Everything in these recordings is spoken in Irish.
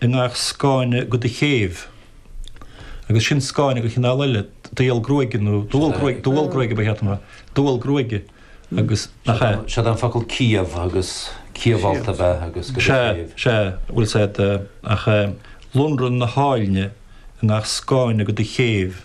i ngach scáinne de do chéibh, agus sin scáinne de chineál eile, dual gruaige nó dual gruaige, dual gruaige ba chéata mar, dual gruaige agus nach ea? Siad an focal ciabh agus ciabhfholt ab ea agus de do chéibh. Sea, sea, bhuel said, ach lonradh na háilne i ngach scáinne de do chéibh.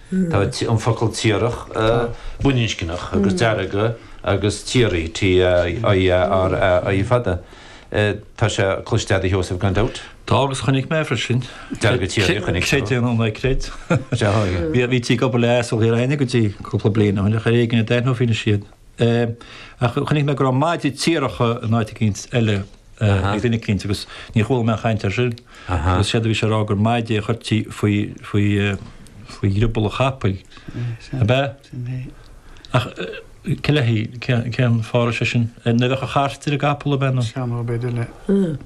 Tá an focal tiarach baininscneach agus deargadh agus tiaraí, T-i-a-r-a-i, fada. Tá sé cloiste agat a Sheosaimh gan dabht. Tá agus chonaic mé freisin. Deargadh tiaraí a chonaic tú. Creid é nó ná creid. Bhítí ag obair le asal i gCorca Dhuibhne go dtí cúpla bliain ó shin ach ar éigean a d'aithneofaí anois iad. é, ach chonaic mé go raibh maide tiaracha in áit eicínt eile ag duine eicínt agus ní chuala mé aon chaint ar sin. Agus séard a bhí sé a rá gur maide a chuirtí faoi, faoi, faoi dhrioball an chapaill, ab ea? Sin é. Ach cé le haghaidh, cén, cén fáth a raibh sé sin? Nuair a bheadh an chairt ar an gcapall ab ea nó? Sea nó, b'fhéidir le.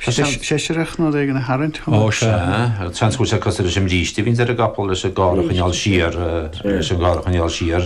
Seisreach nó rud éigin a tharraingt chun. Ó sea. Seans go bhfuil sé cosúil leis an mbríste a bhíonns ar an gcapall leis an gcarr a choinneáil siar, leis an gcarr a choinneáil siar.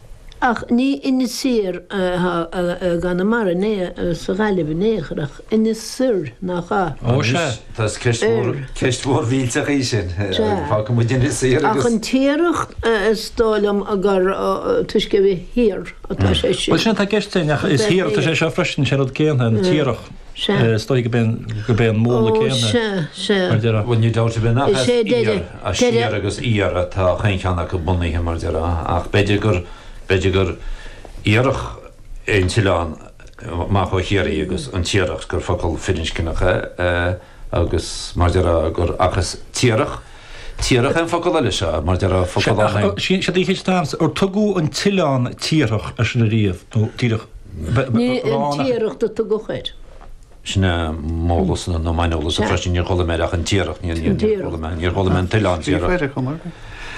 Ach ní Inis Oírr i gConamara ná sa Ghaillimh in aon chor ach Inis Oirr, nach ea? Ó sea. Tá ceist mhór mhillteach í sin. Fágfaidh muid Inis Oírr agus. Ach an Tiaracht is dóigh liom gur toisc go bhfuil sé thiar atá sé sin. Bhuel sin atá i gceist féin ach is thiar atá sé seo freisin, sé rud céanna, an tiarach. Sea. Is dóigh go b'é go b'é an múnla céanna. Ó, sea, sea. Mar déarfá. Bhuel, ní damhsa bheith nach Is as é deireadh, iar, as deireadh. siar agus iar atá chaon cheann acu bunaithe, mar déarfá, ach b'fhéidir gur, b'fhéidir gur iarthach é an t-oileán, amach ó Chiarraí agus an Tiaracht gur focal firinscneach é. agus mar déarfá gur seachas tiarach, tiarach é an focal eile seo, mar déarfá focal an. Sin siad a dhíchill san áireamh, ar tugadh an t-oileán tiarach air sin ariamh, nó Tiaracht, b'fhearr Ní an rá nach. Tiaracht a tugadh air. Sin é m'eolas, nó m'aineolas, air freisin, níor chuala mé air ach an Tiaracht, níor chuala Tiaracht. mé, níor chuala mé an t-oileán tiarach. Chléire, Conor.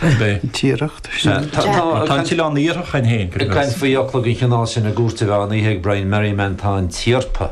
B'é. Tiaracht, sin. Tá, tá, Tá an t-oileán iarthach ann féin, go deimhin. Caint faoi fhocla den chineál sin i gCúirt an Mheán Oíche ag Brian Merriman, tá an tiarpa.